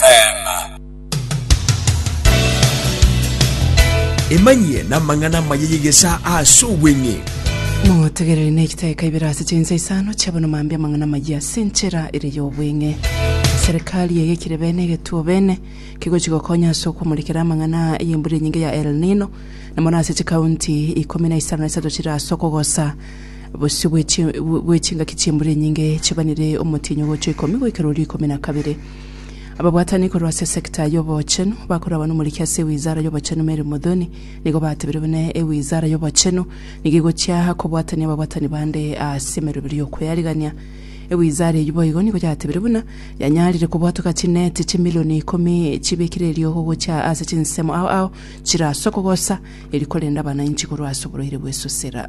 Amen. Emanyie namang'ana amaya y'egesaa aase obweng'e. Motegereri ne chitaeka ibere ase chinsa isano chiabono mambia amang'ana amayia ase enchera ere y'obweng'e. Serikali eyekire bene egetuo bene kegochi gokonya ase okwomorikera amang'ana aa ey'embura enyinge ya El Nino na mono ase chikaunti ikomi na isano na isato chire ase okogosa bosio bwe chi- bwe chingaki chi'embura enyinge chibanire omotienyi ogocha ikomi goika erorio ikomi na kabere. Ababwatani korwa ase esecta y'obochenu bakoragwa nomoriki ase ewizara y'obochenu Mary Muthoni nigo batebire buna ewizara y'obochenu nigo egochia kobwatania ababwatani bande ase emeroberio y'okweyarigania. Ewizara eyio boigo nigo yatebire buna yanyarire kobwatoka chineti chimilioni ikomi chibekire erio gogochia ase chinsemo ao ao chirasokogosa eri korenda abanainchi korwa ase oborwaire bw'esusera.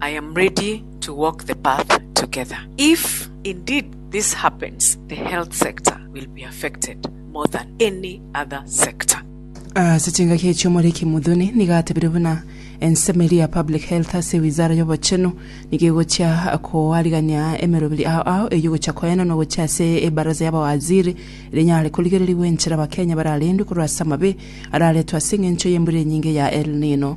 I am ready to walk the path together. If indeed this happens, the health sector will be affected more than any other sector. Ase chingaki echio Omoriki Muthoni nigo atebire buna ensemo eria ya Public Health ase Wizara y'Obochenu nigo egochia koarigania emeroberi ao ao eyio gochia koena na ogochia ase Ebaraza y'Abawaziri rinyare korigererigwa enchera Abakenya bararendwe korwa ase amabe araretwe ase eng'encho y'embura enyinge ya El Nino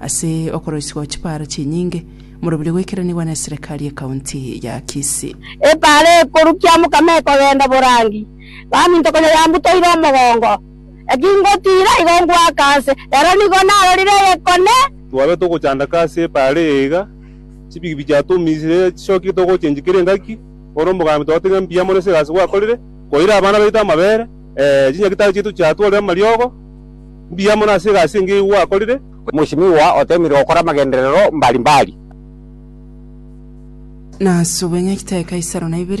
Ase okoroisigwa chipaaro chinyinge, morobio goikeranigwa neserekari ye county ya Kisii. Epaaro ekoru kiamokama ekogenda borangi, baminto konya yambutoire omogongo. Eki ngotiira igo ngoaka anse, rero nigo narorire egekone. Twabire togochandaka ase epaaro eye iga, chibigibigi chiatumisire chisokigete ogochenchwa kera engaki, bono omogambi twagotebirie ng'a mbuya mono ase egasi gwakorire, koira abana baito amabere, ee, chinyagitari chiaito chiatworire amariogo, Mbuya mono ase egasi engiya eyio gwakorire. Omosimigwa oteemire gokora amagenderero mbari mbari. Nase obweny'ekitebe Kaisaro na ibere.